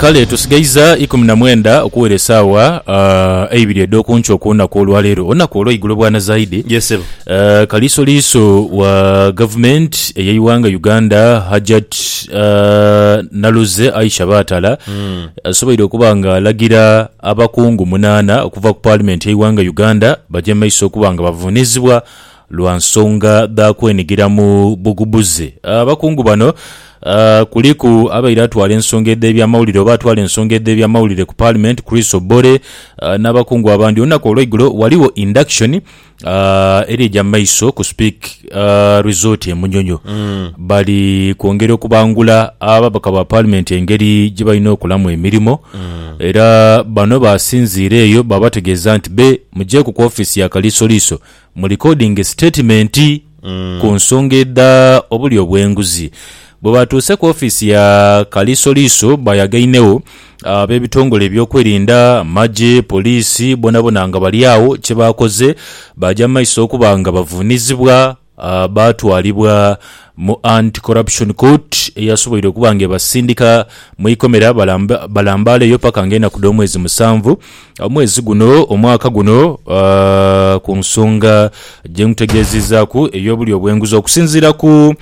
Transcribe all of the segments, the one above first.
Kale tusigaiza ikumi na mwenda okuwera esaawa eibiri edh'oku nkyo ku lunaku olwaleero, olunaku olweigulo bwana Zaidi. Yes ssebo. Uh, kaliisoliiso wa gavumenti ey'eighanga Uganda Hajat uh, Naluzze Aisha Baatala asoboire okuba nga alagira abakungu munaana okuva ku paalimenti y'eighanga Uganda baje mu maiso okuba nga bavuunizibwa Lwa nsonga dha kwenhigira mu bugubuzi, abakungu bano kuliku abaire atwala ensonga edh'ebyamawulire oba atwala ensonga edh'ebyamawulire ku Paalimenti Chris Obore n'abakungu abandi. Olunaku olweigulo ghaligho induction eri eja maiso ku Speke Resort e Munyonyo. Bali kwongera okubangula ababaka ba Paalimenti engeri gye balina okolamu emirimo era bano baasinziira eyo baabategeeza nti be mujeeku ku ofiisi ya Kaliisoliiso Mu likodinge sitatimenti ku nsonga edha obulyo obw'enguzi. Bwe baatuuse ku ofiisi ya Kaliisoliiso baayagainegho ab'ebitongole ebyokwerinda, amagye, poliisi bonabona nga bali agho. Kye baakoze baaja mu maiso okuba nga bavuunizibwa baatwalibwa mu Anti Corruption Court eyasoboire okuba nga ebasindika mu ikomera balambaaleyo paka nga enaku dh'omwezi musanvu omwezi guno, omwaka guno, ku nsonga gye nkutegeezizaaku ey'obulyo obw'enguzi okusinziira ku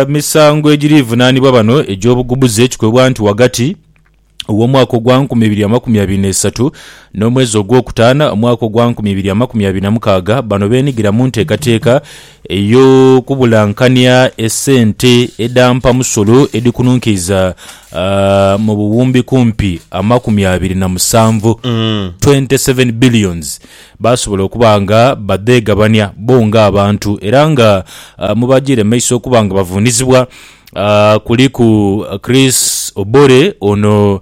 misango egirivunaanibwa bano egy'obuggubuze kikoibwa nti ghagati w'omwaka ogwa nkumi ibiri amakumi abiri n'eisatu n'omwezi ogwokutaana omwaka ogwa nkumi ibiri amakumi abiri na mukaaga bano beenigira mu nteekateeka Eyo kubulankania esente edha mpamusolo edhikununkiiza mu buwumbi kumpi amakumi abiri na musanvu, twenty seven billions, baasobola okuba nga badheegabania bo ng'abantu era nga mu bagiire mu maiso okuba nga bavuunizibwa kuliku Chris Obore ono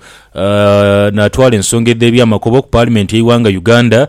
n'atwala ensonga edh'ebyamakobo ku Paalimenti y'eighanga Uganda,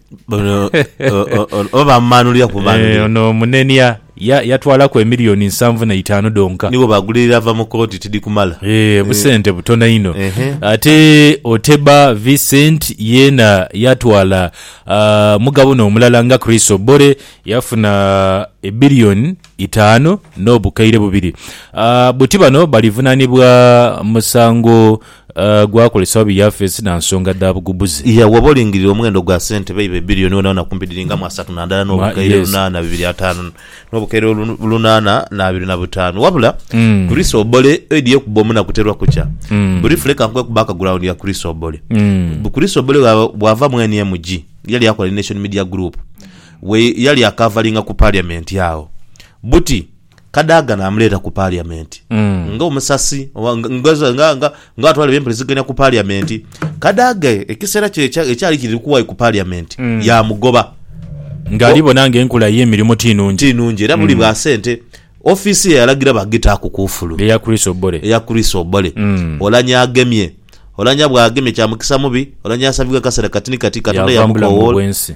Ono- o- o- o- oba amumanulira ku Eh, manulira ono omunenia ya- yatwalaku emiliyoni nsanvu na itaanu dhonka nibo bagulirira ava mu kooti tidi kumala Eh, busente butono inho Ehe. ate oteba vincent yena yatwala ah, mugabo nomulala nga chris obore yafuna ebiliyoni itaanu nobukaire bubiri Ah, buti bano balivunanibwa musango Gwakolesa obi yafeesi na nsonga dha bugubuzi. Iya, Woba olingirira omughendo gwa sente beiba ebbirioni wonawona kumpi dhiri nga mu asatu na ndala n'obukaire Yes. lunaana bibiri ataanu n'obukaire lu- lunaana n'abiri na butaanu. Wabula, Kuriso Obole oidhi yekubba omuna kuterwa kukya. Burifu leka nkube ku background ya Kuriso Obole. Bu- Kuriso Obole bwa- bwava mu NMG, yali akola ni Nation Media Group. We yali akavalinga ku parliament agho. Buti. Kadaga naamuleeta ku Paliyamenti nga omusasi oba nga- nga- nga- nga- nga- nga atwala eby'empuliziganya ku Paliyamenti. Kadaga ekiseera kye ekya- ekyali kiri kuwayo ku Paliyamenti yaamugoba. Ng'ali bona ng'enkula ye emirimu ti nnungi. Ti nnungi era buli bwa sente ofiisi ye yalagira bagitaaku kuufulu. Eya Chris Obore. eya Chris Obole Olanya agemye Olanya bw'agemye kya mukisa mubi Olanya asabibwa akaseera kati ni kati Katonda Yaava mu bulamu yamukowoola obw'ensi.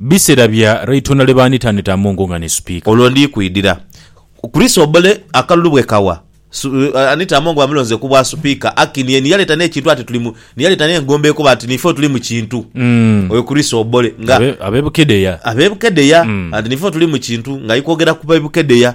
Bisera bya raitona lwe baanitanita mu nkunga ni Sipiika. Olwo ndi kwidira kuli Sobole akalulu bwe kawa Anita Among bamulonze ku bwa Sipiika. Akin ye ni yaleta n'ekintu ati tuli mu, ni yaleta n'engombo ekoba ati niife otuli mu kintu. Oyo kuli Sobole nga. Abe, abe Bukedea. Abe Bukedea, ati niife otuli mu kintu, nga ali kwogera ku be Bukedea.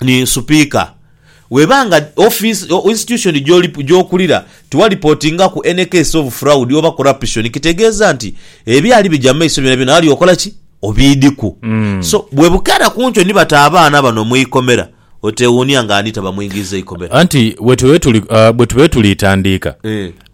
ni Supiika. Bw'eba nga ofiisi, institution, gy'okulira tiwalipotingaku any case of fraud oba corruption, kitegeeza nti ebyali bigya mu maiso byonabyona wali okola ki? Obiidhiku. So, bwe bukeera ku nkyo ni bata abaana bano mu ikomera, oteewuunia nga ani tabamwingiiza ikomera. Anti bwe tubaire tuli tandiika,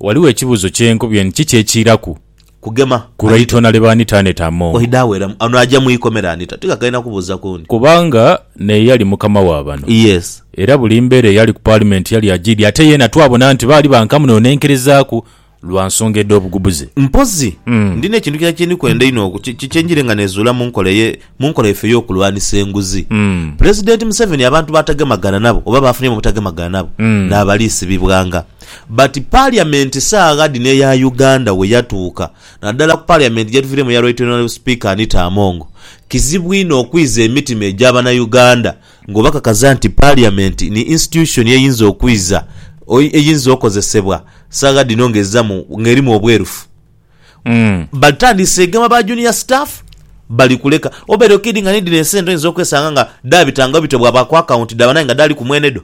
ghaligho ekibuuzo kye nkubye nti kiki ekiiraku? kugema. Ku lwaitona lye baanitaaneta amongo. Oidha aweramu. Ono aja mu ikomera anita. Ti kakaina kubuuza kundi. Kubanga naye yali mukama wa bano. Yes. Era buli mbeera eyali ku Paalimenti yali ajiidhi ate yeena twabona nti baali ba nkamu n'onenkerezaaku lwa nsonga edh'obugubuzi. Mpozi, ndina ekintu kirala kye ndi kwenda inho oku, kye njire nga nezuula mu nkola eye, mu nkola yaife ey'okulwanisa enguzi. Pulezidenti Museveni abantu b'atagemagana nabo oba b'afunye mu butagemagana nabo naaba aliisibibwanga. But Parliament saagha dhino eya Uganda we yatuuka, naddala ku Parliament gye tuviiremu eya Right Honourable Speaker Anita Among, kizibu inho okwiza emitima egya Banauganda ng'obakakaza nti Parliament ni institution eyinza okwiza, eyinza okozesebwa saagha dhino ng'ezza mu, ng'erimu obwerufu. Batandise egema ba junior staff bali kuleka obere kid nga ni dhino esente oyinza okwesanga nga dhabitangagho bityo bwaba ku account dhaba naye nga dhali ku mwene dho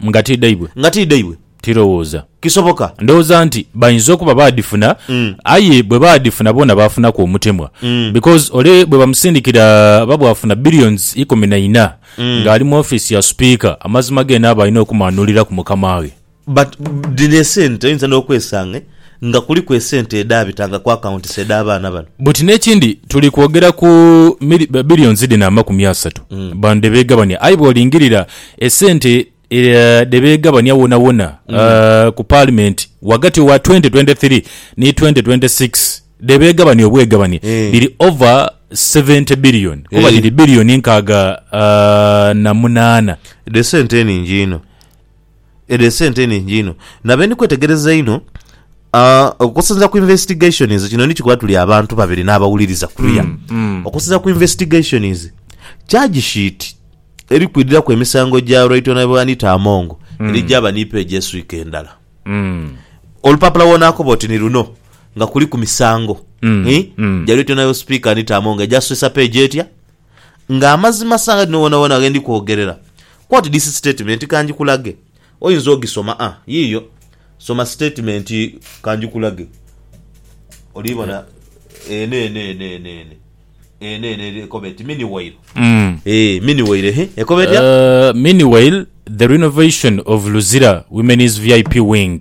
Nga ti dhaibwe. nga ti dhaibwe. Tirowooza. Kisoboka. Ndowooza nti bayinza okuba baadhifuna aye bwe baadhifuna boona baafunaku omutemwa because ole bwe bamusindikira aba bwafuna billions ikumi na ina ng'ali mu ofiisi ya Supiika amazima geene aba alina okumaanuliraku mukamaghe. But dhino esente oyinza nokwesange nga kuliku esente edhabitanga ku accounts edha baana bano. But nekindi tuli kwogera ku mili, billions dhino amakumi asatu bano dhebegabania aye bwolingirira esente dhebegabania wona wona ku parliament wagati wa 2023 ni 2026 dhebegabania obwegabani dhiri over 70 billion kuba dhiri billion nkaaga na munaana. Dhesente ningi inho. Edho esente nhingi inho nabe ndi kwetegereza inho okusinzira ku investigations kino nikikola tuli abantu babiri n'abawuliriza kuya mm, mm. okusinzira ku investigations charge sheet eri kwidiraku emisango gya Right Honorable Anita Among mm. eri gyaba ni page eswika endala mm. olupapula wonakoba oti ni luno nga kuliku misango mm. eh? mm. gya Right Honorable Speaker Anita Among egyaswisa page etya nga amazima sanga dhino wonawona ghe ndi kwogerera. Quote this statement ka ngikulage. Oyinza ogisoma. A, yiiyo. Soma sitatimenti ka ngikulage. Oli bona eno, eno, eno, eno, eno. Eno, eno, eno ekoba eti Miniwayiro. Eeh, Miniwayiro, ehe. Ekoba etya? Miniwayiro, The Renovation of Luzira Women's VIP Wing.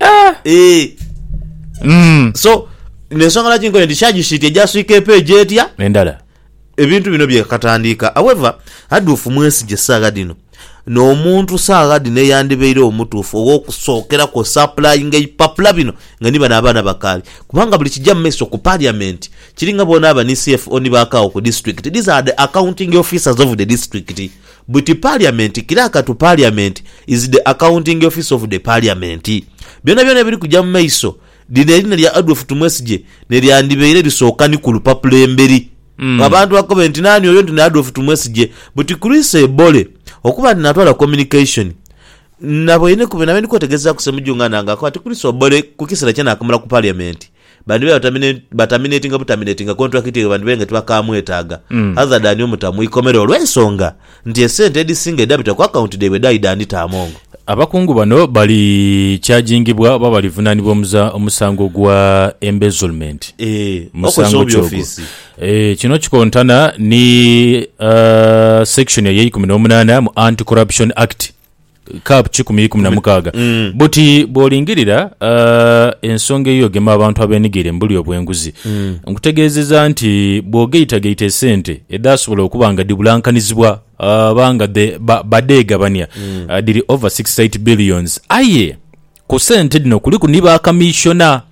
Ah! Eeh. Mm. So, nensonga lwaki nkoye nti charge sheet egya swiika epage etya, Endala. ebintu bino byekatandiika. However, Adolf Mwesigye saagha dhino n'omuntu saagha dhino eyandibaire omutuufu ow'okusookeraku osapulayinga ebipapula bino nga ni bano abaana bakaali kubanga buli kija mu maiso ku Parliament kiri nga boonaaba ni CFO ni ba Kawo ku District. These are the accounting officers of the District. Buti parliament kila katu parliament is the accounting office of the parliament. Byona byona ebiri kuja mu maiso lino erina lya Adolf Tumwesigye nelyandibeire lisooka ni ku lupapula emberi nga abantu bakobe nti nani oyo nti ni Adolf Tumwesigye buti Chris Ebole okuba nti natwala communication nabweinekuba nabendikwetegezaku Ssemujju nga nange akoba ati Chris Obole kukisera kye nakamala ku parliament Bandibaire batamine, bataminatinga butaminatinga kontulakiti eyo bandibaire nga tibakamwetaaga. Hazard ani omuta mu ikomera olw'ensonga nti esente edhisinga edhabita ku akawunti dhaibwe dhaali dha Anita Among. Abakungu bano bali kyajingibwa oba balivunaanibwa omuza, omusango gwa embezzlement Eeh, okozesa musango obubi ki ogwo? ofiisi. Eeh, kino kikontana ni, uh, section ey'eikumi n'omunaana mu Anti-Corruption Act. Kap. Kikumi ikumi na mukaaga. Buti bw'olingirira eh, ensonga ey'ogema abantu abeenigire mu bulyo bw'enguzi, nkutegeezeza nti bw'ogaitagaita esente edhaasobola okuba nga dhibulankanizibwa oba nga dhe- ba- badheegabania, eh, dhiri over 68 billions. Aye. Ku sente dhino kuliku ni ba Kamishona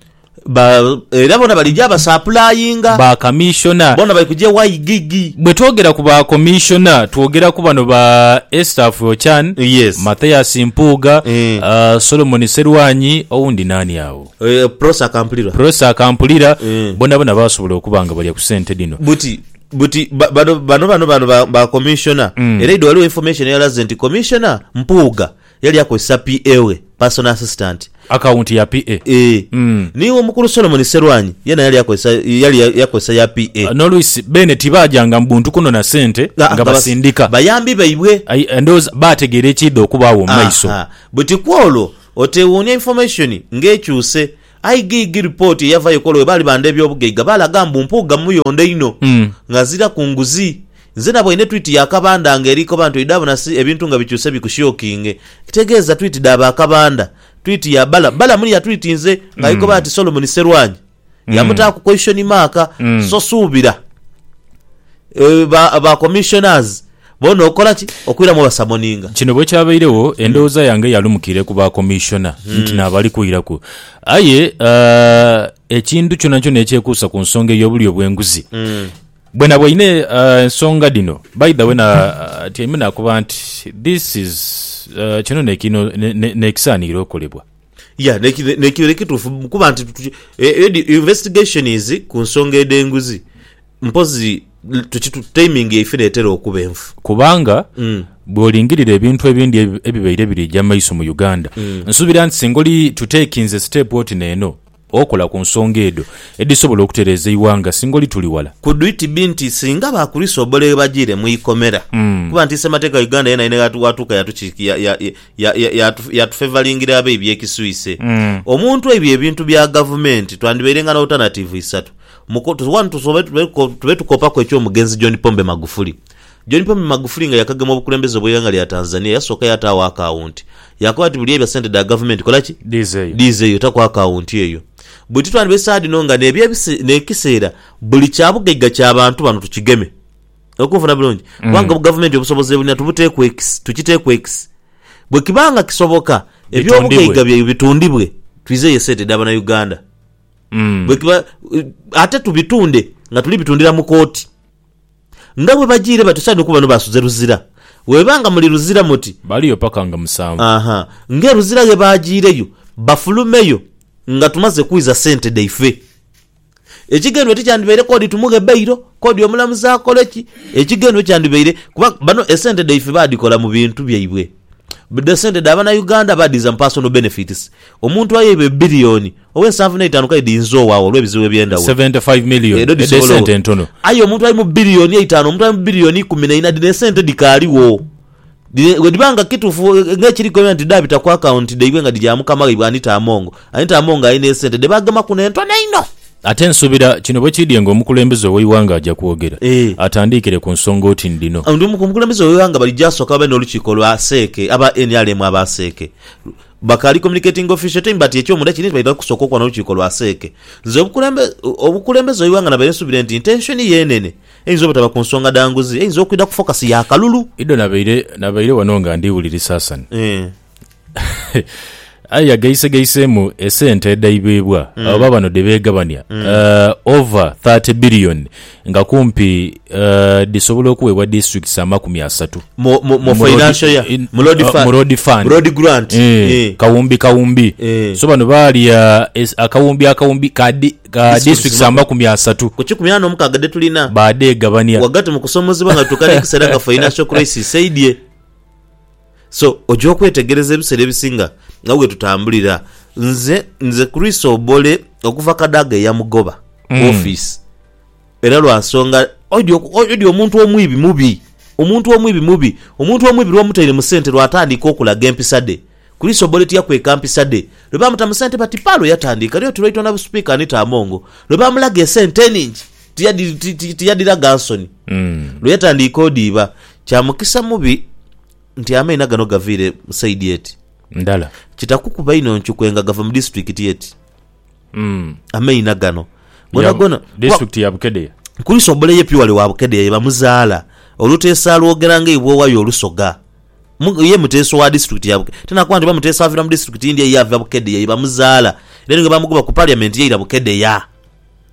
ba. Era bona balija basapulayinga. Ba Kamishona. Bona bali kuja ewa Igigi. Bwe twogera ku ba Komishona twogera ku bano ba Estaph Ochan, Yes. Mathias Mpuuga, Eh. Solomon Serwanyi, owundi naani agho? Eh, Prossy Akampulirwa. Prossy Akampulira, Eh. bonabona basobola okuba nga balya ku sente dhino. Buti buti ba- bano bano bano bano ba- ba Commissioner. Era idho waliwo information eyalaze nti Commissioner Mpuuga Yali akozesa PA we, personal assistant. Akawunti ya PA. Eeh. Mm. Ni w'omukulu Solomoni Serwanyi yeena yali akozesa, yali akozesa ya PA. N'oluisi beene tibaajanga mu buntu kunona sente Aa, nga bas, basindika. bayambi baibwe. Ai, ndowooza baategeera ekiidha okubaagho mu maiso. Aha. Buti kw'olwo, otewuunia information ng'ekyuse. Aye giigii lipooti eyavayo ekola we baali bandha eby'obugaiga baalaga mbu Mpuuga muyondho inho nga aziraku nguzi. Nze naboine twiti ya Kabandha nga eri koba nti oidha bona si ebintu nga bikyuse bikushiokinge. Ekitegeeza twiti dha ba Kabandha. Twiti ya Balamu. Balamu ni yatwitinze nga ali koba nti Solomon Sserwanyi yamutaaku question mark. So suubira ba commissioners Boona okola ki? Okwira mu basamoninga. Kino bwekyabairegho, endhoghoza yange yalumukire ku ba Commissioner nti naabali kwiraku. Aye ekintu kyonakyona ekyekuusa ku nsonga ey'obulyo bw'enguzi, bwenaba oine ensonga dhino, by the way natyaime nakoba nti this is kino nekisaanire okolebwa. Yeah, nekyo kituufu kuba nti investigation is ku nsonga edh'enguzi. Mpozi tuki tu timing yaife n'etera okuba enfu. Kubanga bw'olingirira ebintu ebindi ebi ebibaire biri eja maiso mu Uganda, nsuubira nti singa oli tu takinze siteepu oti n'eno okola ku nsonga edho edhisobola okutereeza eighanga singa oli tuli wala. Could it be nti singa ba Kurisu obolere bajiire mu ikomera kuba nti Ssemateeka wa Uganda yeena yena waatuuka yatuki ya ya ya ya ya yatufevalingira abe eby'ekiswise. Omuntu ebyo ebintu bya gavumenti twandibairenga n'alternativu isatu. Mukoto, Wano tusoma tube tukopaku eky'omugenzi John Pombe Magufuli. John Pombe Magufuli nga yakagema obukulembeze bw'eighanga lya Tanzania yasooka yataagho akaawunti. Yakoba ati buli ebya sente dha gavumenti kola ki? Dhiizeeyo. Dhiizeeyo, taku akaawunti eyo. Bwetutyo ghandiba esaagha dhino nga n'ekiseera buli kya bugaiga kya bantu bano tukigeme. Oli kunfuna bulungi? Kubanga gavumenti obusobozi ebulina tubuteeku ekisi, tukiteeku ekisi. Bwekiba nga kisoboka eby'obugaiga byaibwe bitundibwe, twizeeyo esente edha Banauganda. Mm. bwekiba ate tubitunde nga tuli bitundira mu kooti nga bwebajiire batyo saidi okuba bano basuze Luzira bweba nga muli Luzira muti Baliyo paka nga musanvu. aha nga eLuzira ghebajiireyo bafulumeyo nga tumaze kwiza sente dhaife ekigendwa tikyandibaire kodi tumughe bailo kodi omulamuzi akole ki ekigendwa kyandibaire kuba bano esente dhaife badhikola mu bintu byaibwe dha sente dha banauganda badhiza mu personal benefits omuntu ayeibwa ebillion Owe nsanvu n'eitaanu kale dhiinza owaagho olw'ebizibu eby'endhawulo. Seventy five million Edho edh'e dhisobola sente entono. Aye omuntu ali mu billion eitaanu, omuntu ali mu billion ikumi n'eina dhino esente dhikaaligho. Dhino bwedhiba nga kituufu nga ekiri kwebyo nti dhaabita ku account dhaibwe nga dhija mukama waibwe Anita Among, Anita Among alina esente dhe baagemaku n'entono einho. Ate nsuubira kino bwe kiidhye nga omukulembeze ow'eighanga aja kwogera, Eeh. atandiikire ku nsonga oti ni dhino. Omukulembeze ow'eighanga balijja asooke babe n'olukiiko lwa seeke, aba nrm aba seeke. Bakaali communicating official team but ekyomunda kiri nti baidha kusooka okubona lukiiko lwa CEC. Nze obukulembeze obukulembeze gheighanga nabaire nsubire nti intention ye enene eyinza obutaba ku nsonga dha nguzi eyinza okwidha ku focus ya kalulu. Ido nabaire nabaire ghano nga ndi wulirisa Hassan. Eeh. Aye yagaisegaisemu esente edhaibebwa abo baabano dhe beegabania over thirty billion Nga kumpi dhisobola okuweebwa disitulikiti amakumi asatu mu Road Fund, kawumbi kawumbi. So bano baalya akawumbi akawumbi ka disitulikiti amakumi asatu baadhegabania. So oja okwetegereza ebiseera ebisinga nga bwetutambulira. Nze nze Chris Obole okuva Kadaga eyamugoba ku mm. office era lwansonga odi omuntu omwibi mubi omuntu omwibi mubi omuntu omwibi lwomutaire mu sente lwatandika okulaga empisa de Chris Obole tiyakweka mpisa de lwe bamuta mu sente bati palo yatandika lyo tulwaitwa na busipiika Anita Amongo lwe bamulaga esente eningi tiyadhi- ti- ti- tiyadhiraga nsoni lwe yatandiika odiiba. Kya mukisa mubi nti amaina gano gaviire mu saidi eti. Ndala. Kitakukuba inho ncukwe nga gava mu disitulikiti eti. Mm. Amaina gano gonagona Ya- kuba District ya Bukedea. Kuliisa obole ye Piwale wa Bukedea ye bamuzaala, Oluteesa alwogera nga eibwoowa lya Olusoga. Mu- Ye muteesa owa disitulikiti ya Bukedea. Tinakuba nti oba muteesa avira mu disitulikiti ndhi aye ava Bukedea ye bamuzaala. Era ni bwebamugoba ku parliament yaira Bukedea.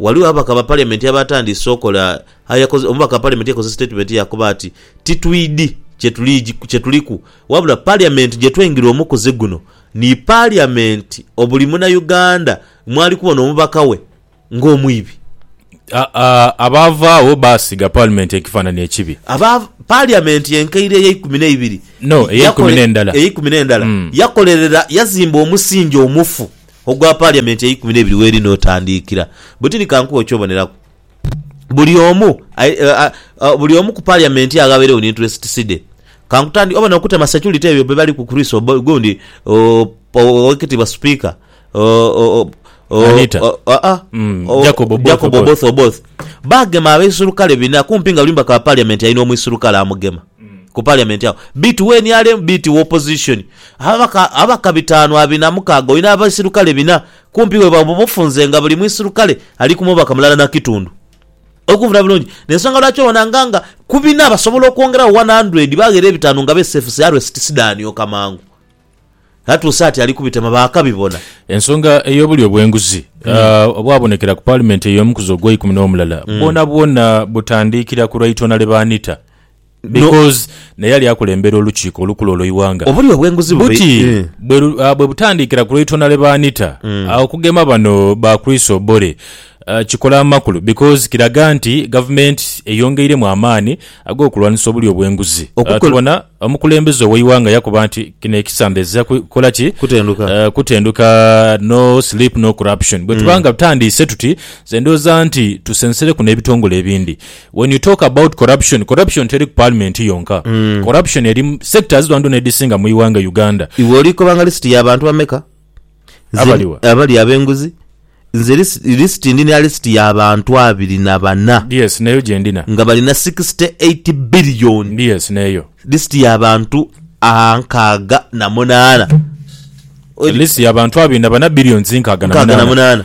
Ghaligho ababaka ba Paliamenti abaatandise okola aye omubaka wa Paliamenti yakoze sitatimenti yaakoba ati, Titwidhi kye tuliku wabula Paliamenti gye twengila omukuzi guno ni Paliamenti obuli Munauganda mwali kubona omubaka we ng'omwibi. Abaavaagho baasiga Paliamenti ekifaanani ekibi. Paliamenti enkaire ey'eikumi n'eibiri yakolerera yazimba omusingi omufu Ogwa Paliamenti eikumi n'ebiri w'eri n'otandiikira, bwe tiri ka nkuwe okyoboneraku. Buli omu, buli omu ku Paliamenti aghabeireo ni interests dhe. Ka nkutandike, obona okutema security ebyo bye baliku Chris gundi Owekitiibwa Sipiika, Jacob Oboth Oboth, baagema abaisurukale bina kumpi nga buli mubaka wa Paliamenti alina omwisurukale amugema. ku parliament agho bit we nrm bit we opposition ababaka ababaka bitanu abiri na mukaaga olina abaisirukale bina kumpi we baba obufunze nga buli muisirukale ali ku mubaka mulala na kitundu olikunvuna bulungi nensonga lwaki obona nga nga ku bina basobola okwongera gho 100 baghera ebitanu nga besefusi arest sidani oka mangu. Atuuse ati ali kubitema baakabibona. Ensonga ey'obulyo bw'enguzi obwabonekera ku Paalimenti ey'omukuzi ogweikumi n'omulala bwonabwona butandiikira ku Right Honourable Anita because naye yali akulembera olukiiko olukulu olw'eighanga. Obulyo bw'enguzi buti bwebutandiikira ku Right Honourable Anita, okugema bano ba Chris Obore kikola amakulu because kiraga nti Gavumenti eyongeiremu amaani ag'okulwanisa obulyo bw'enguzi. Tubona. Omukulembeze ow'eighanga yakoba nti kino ekisamba ezira kukola ki? Kutenduka. Eh, kutenduka, no sleep no corruption. Bwetuba nga tutandiise tuti, nze ndhooza nti tusensereku n'ebitongole ebindi. When you talk about corruption, corruption teri ku parliament yonka. Corruption eri mu sectors dhonadhona edhisinga mu ighanga Uganda. Iwe olikoba nga list ya bantu bameka? Nze- Abaliwa. abali ab'enguzi nze lis- lisiti ndi na lisiti ya bantu abiri na bana yes neyo gyendina nga balina 68 billion ndi yes neyo lisiti ya bantu a nkaaga na munaana list yabantu abiri na bana billions nkaaga na nkaaga na munaana munaana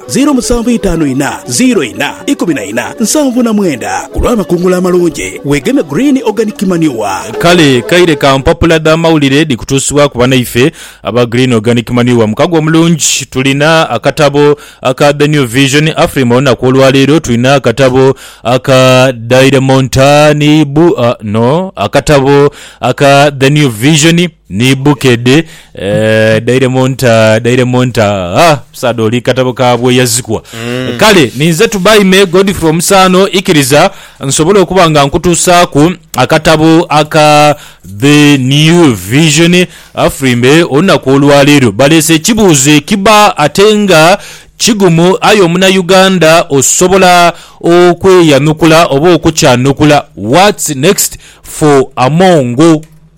Ziiro musanvu itaanu inha, ziiro inha, ikumi na inha, nsanvu na mwenda. Ku lw'amakungula amalungi, weegeme Green Organic Manure. Kale kaire ka mpapula dha mawulire dhikutuusibwaku banaife aba Green Organic Manure. Mukago omulungi tulina akatabo aka The New Vision Afrima olunaku olwaleero, tulina akatabo aka Dairemontani bu, no akatabo aka The New Vision, Ni bukedde eeh dairemu nta dairemu nta aah musaadha oli katabo ka bweyazikwa kale ninze Tubaime Godfrey Omusaano ikiriza nsobole okuba nga nkutuusaaku akatabo aka The New Vision Afrimbe olunaku olwaleero baleese ekibuuzo ekiba ate nga kigumu aye omunauganda osobola okweyanukula oba okukyanukula what's next for Amongo?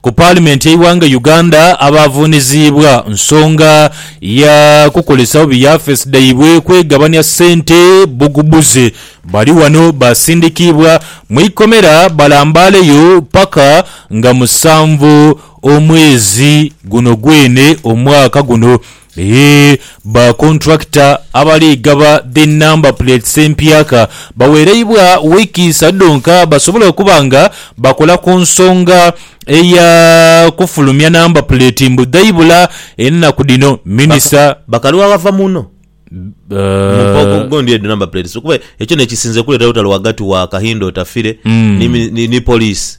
Ku paalimenti y'eighanga Uganda, abaavuniziibwa nsonga ya kukozesa bubi yafeesi dhaibwe kwegabania sente bbugubuzi bali ghano baasindikiibwa mu ikomera balambaaleyo paka nga musanvu omwezi guno gwene omwaka guno. Eeh ba kontulakita abali gaba dhi nnamba puleetisi empyaka bawereibwa wiiki isatu dhonka basobole okuba nga bakola ku nsonga eya kufulumya namba puleeti mbu dhaibula enaku dhino, Minisita. Bakalu abava muno mumpoko okugondhia edho namba puleetisi kuba ekyo nekisinze kuleeta olutalo ghagati wa Kahinda Otafire ni Poliisi.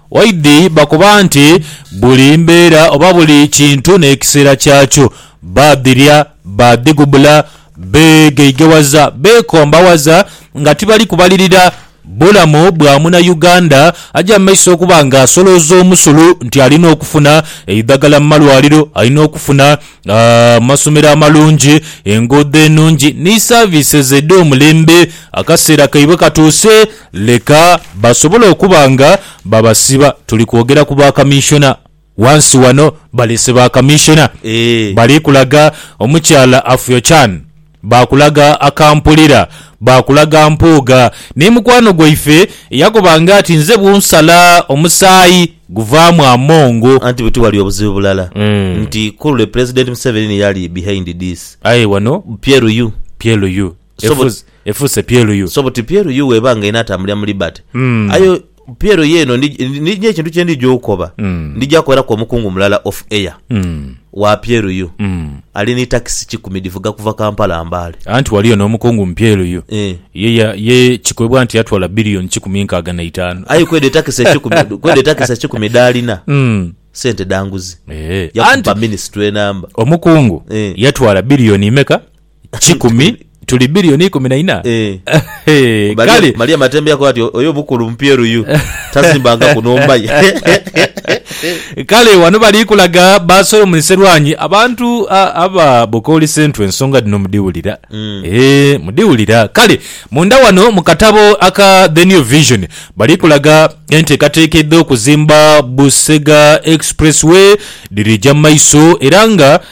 Waidhi bakoba nti, Buli mbeera oba buli kintu n'ekiseera kyakyo. Baadhirya, baadhigubula, beegeighewaza, beekombawaza nga tibali kubalirira bulamu bwa Munayuganda aja mu maiso okuba nga asolooza omusulu nti alina okufuna eidhagala mu malwaliro, alina okufuna amasomero amalungi, enguudo enungi ni saviises edh'omulembe. Akaseera kaibwe katuuse. Leka basobole okuba nga babasiba. Tuli kwogera ku ba Kaminshona. Ghansi ghano baleese ba Kaminshona. Bali kulaga omukyala Afyochan. Baakulaga Akampulira. Baakulaga Mpuuga. Ni mukwano gwaife eyakoba nga ati nze bwonsala omusaayi guvaamu amongo. Anti buti wali obuzibu bulala nti ku lule Pulezidenti Museveni ni yali behind this. Aye wano. Pyeluyu. Pyeluyu. So but- Efuuse- efuuse plu so buti PLU weba nga enatambulira mu liberty Mm. aye PLU eno ndi- ndi- ndi ekintu kyendija okukoba Mm. ndija kuweraku omukungu mulala off air Mm, wa PLU mm. ali ni takisi kikumi divuga kuva Kampala Mbale anti waliyo n'omukungu mu plu Eh. ye, ya- ye kikwebwa nti yatwala biliyoni kikumi nkaaga na itaano aye kweda etakisi ekikumi kweda etakisi ekikumi dalina Mm. sente danguzi Eh, anti yakuba minisitule enamba omukungu Eh. yatwala biliyoni imeka kikumi tuli billioni ikumi na ina Eh. Ehe, Maria, kale Maria Matembe yakoba ati oyo obukulu mupyeruyu tasimbangaku nhumba ye. kale wano bali kulaga ba Solomon Serwanyi abantu a- aba Bukooli Central ensonga dhino mudhiwulira Eh, mudhiwulira kale munda wano mu katabo aka The New Vision bali kulaga enteekateeka edh'okuzimba Busega Express Way dhirija mu maiso era nga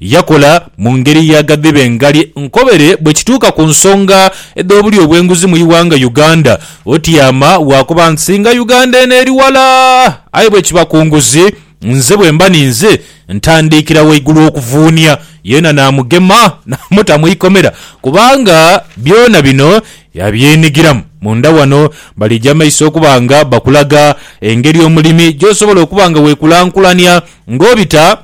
Yakola mu ngeri ya ghadhibe ngari nkobere bwekituuka ku nsonga edh'obulyo bw'enguzi mu ighanga Uganda. Otiama lwakuba nti nga Uganda eno eri wala aye bwekiba ku nguzi nze bwemba ninze ntandiikira waigulu okuvuunia yeena namugema namuta mu ikomera kubanga byona bino yabyenigiramu. Munda wano balija maiso okuba nga bakulaga engeri omulimi gyosobola okuba nga wekulankulania ng'obita.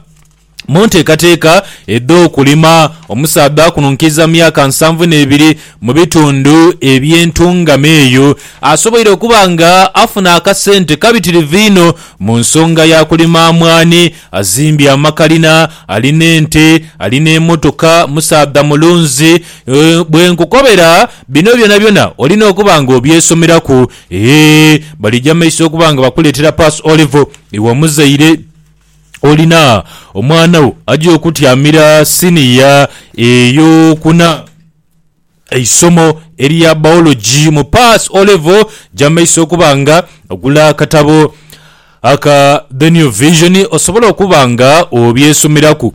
Mu nteekateeka edh'okulima, omusaadha akununkiza myaka nsanvu n'ebiri mu bitundu eby'entungamo eyo asoboire okuba nga afuna akasente kabitirivu inho mu nsonga ya kulima mwaani, azimbye amakalina, alina ente, alina emmotoka, musaadha mulunzi. Bwe nkukobera bino byonabyona olina okuba nga obyesomeraku. Eeh, balija mu maiso okuba nga bakuleetera Pass O-Level iwe omuzaire. Olina omwana wo aja okutyamira siniya ey'okuna eisomo erya Biology mu Pass O Level gy'amaiso okuba nga ogula akatabo aka The New Vision osobola okuba nga obyesomeraku.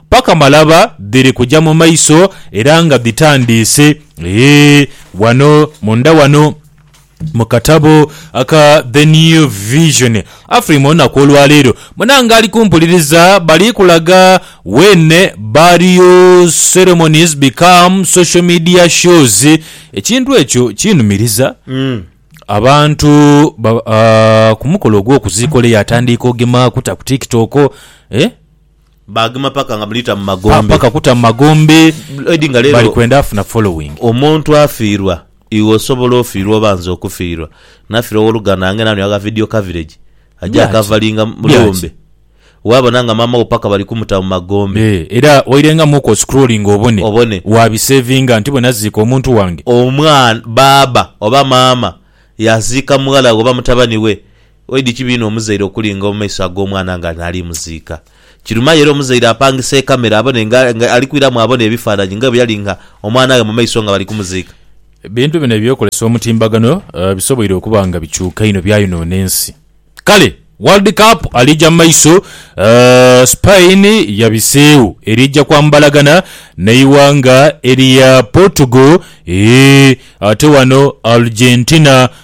Paka malaba dhiri kuja mu maiso era nga dhitandiise. Eeh, ghano munda ghano mu katabo aka The New Vision, Afrima olunaku olwaleero munange ali kumpuliriza bali kulaga When Burial Ceremonies Become Social Media Shows. Ekintu ekyo kinumiriza. Abantu ba, ah, ku mukolo ogw'okuziika ole yaatandiika ogemaaku ta ku TikTok, eh? Baagema paka nga mulita mu magombe. Paka kuta mu magombe. Edi nga lero. Bali kwenda afuna following. Omuntu afiirwa iwe osobola ofiirwa oba nze okufiirwa nafiirwa owoluganda ange nani agha video coverage aja akavalinga mulumbe wabona nga maama wo paka bali kumuta mu magombe. Eeh era wairengamu oku oscrolling obone obone wabisavinga nti bwenaziika omuntu wange. Omwana, baaba oba maama yaziika mughala we oba mutabani we Oidhi kibi inho omuzaire okulinga mu maiso ag'omwana nga naali muziika. Kiruma yo era omuzaire apangisa ekamera abone nga nga ali kwiramu abone ebifaananyi nga bwe yali nga omwana ghe mu maiso nga bali kumuziika. Ebintu bino eby'okozesa omutimbagano bisoboire okuba nga bikyuka inho byayonoona ensi. Kale World Cup aliija mu maiso, Spain yabiseegho eriija kwambalagana n'eighanga erya Portugal, eeh ate wano Argentina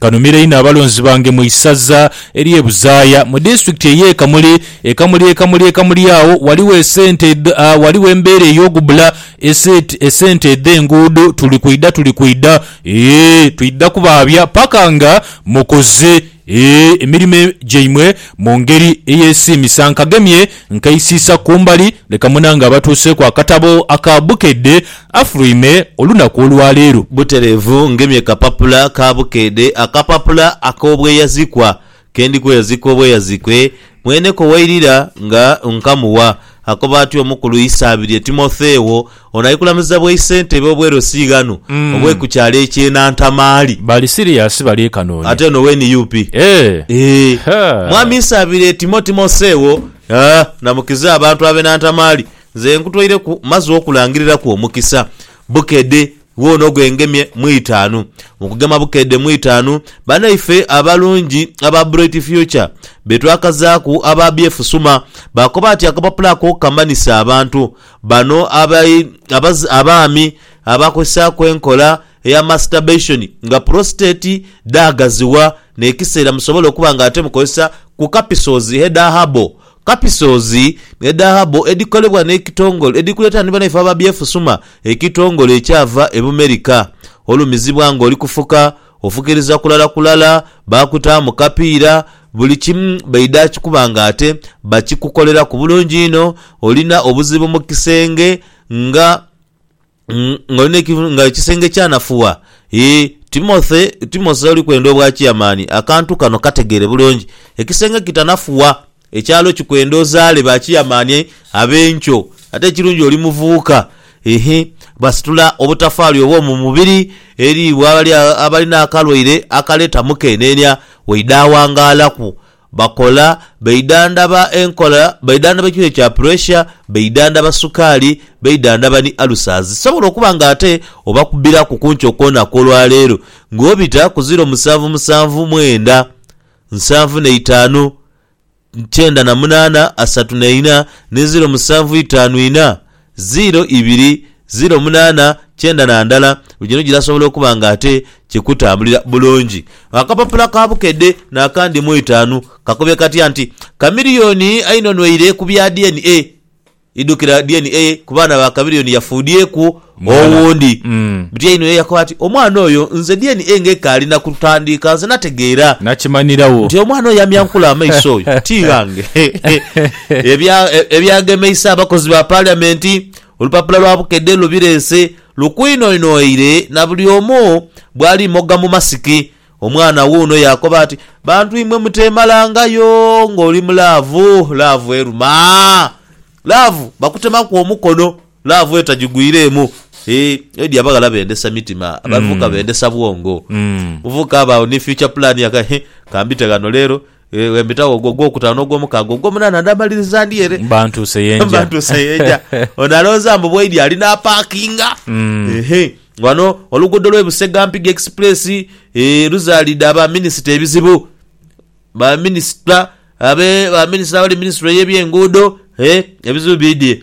Kanumira inho abalonzi bange mu isaza ery'e Buzaaya mu disitulikiti ey'e Kamuli. E Kamuli e Kamuli e Kamuli agho ghaligho esente edh, a, ghaligho embeera ey'ogubbula eset, esente edh'enguudo. Tuli kwidha, tuli kwidha, ee, twidha kubaabya paka nga mukoze, ee, emirimo e, gyaimwe mu ngeri eyesiimisa. Nkagemye nkeisiisa ku mbali, leka munange abatuuseeku akatabo aka Bukedde Afulwime olunaku olwa leero. Butereevu ngemye kapapula ka bukeede, akapapula ak'obweyazikwa, ke ndi kweyazika obweyazikwe, mweneko wairira nga nkamuwa. Akoba atyo omukulu Isaabirye Timotheo, ono ali kulamiza bwaisentebe obwerosi ghano obwe ku kyalo eky'e Nantamaali. Bali siriasi bali kanoni. Ate ono owe nup. Eeh. Eeh. Ha. Mwami Isaabirye Timo Timotheo, aah, namukiza abantu abe Nantamaali Nze nkutwaireku maze okulangiriraku omukisa. Bukedde woono gwe ngemye mu itaanu. Mu kugema Bukedde mu itaanu, banaife abalungi aba Bright Future be twakazaaku aba BF Suma baakoba ati akapapula ako kamanhise abantu bano abai, abaz, abaami abakozesaaku enkola eya masturbation nga prostate dhaagazibwa n'ekiseera musobole okuba nga ate mukozesa ku kapisozi header herbal Kapisoozi, ne dhahabu edhikolebwa n'ekitongole edhikuleeta ni banaife aba Byefusuma, ekitongole ekyava e Bumerika. Olumizibwa ng'oli kufuka, ofukiriza kulala kulala, baakutaamu kapiira, buli kimu baidha akikuba ng'ate bakikukoleraku bulungi inho. Olina obuzibu mu kisenge nga Mm, nga oli n'ekivu- nga ekisenge kyanafuwa Ee, Timothy, Timothy oli kwenda obwa kiyamaani, akantu kano kategeere bulungi. Ekisenge kitanafuwa, ekyalo kikwenda ozaale ba kiyamaani ab'enkyo. Ate ekirungi oli muvubuka. Ehe, basitula obutafaali obw'omu mubiri eri bw'abali a- abali n'akalwaire akaleeta mukeeneenia, waidha awangaalaku. Bakola, baidhandhaba enkola, baidhandhaba ekirwaire kya puresha, baidhandhaba sukaali, baidhandhaba ni alusazi. Sobola okuba nga ate obakubbiraku ku nkyo kw'onaku olwa leero ng'obita ku ziro musanvu musanvu mwenda, nsanvu na itaanu, kyenda na munaana, asatu na ina ni ziro musanvu itaanu ina. Ziiro ibiri, ziiro munaana, kyenda na ndala, buli kimu kirasobola okuba nga ate kikutambulira bulungi. Akapapula ka Bukedde n'akandi mu itaanu kakubye katya nti, Chameleone ainonweire ku bya DNA, idhukira DNA ku baana ba Chameleone yafuudhyeku Mwana. owundi. Mm. Butyainho ye yakoba ati, Omwana oyo nze DNA ng'ekaali na kutandiika nze nategeera Nakimanirawo. nti omwana oyo amyankula amaiso oyo ti ghange. Ebyagemeisa abakozi ba Paliamenti, olupapula lwa Bukedde lwe bireese lukwinoinwaire na buli omu bwali mogga mu masiki. Omwana wuuno yaakoba ati, Bantu imwe muteemalangayo ng'oli mu laavu, laavu eruma. Laavu bakutemaku omukono, laavu etagigwireemu. Eeh, edi abaghala bendesa mitima, abavubuka bendesa bwongo. Omuvubuka aba agho ni future plan, aka, Heh, ka mbite ghano leero. Bwe mbitagho ogwo ogwokutaano, ogwomukaaga, ogwomunaana ndaamaliriza ndi ere. Mba ntuuse ye nja. Mba ntuuse ye nja. Ono alowooza mbu bwaidhi ali n'apaakinga. Ehe. Ghano oluguudo lw'e Busega Mpiga Express eh, luzaalidde aba minisita ebizibu. Ba minisita, abe, ba minisita abali mu minisitule y'ebyenguudo, eh, ebizibu biidhie.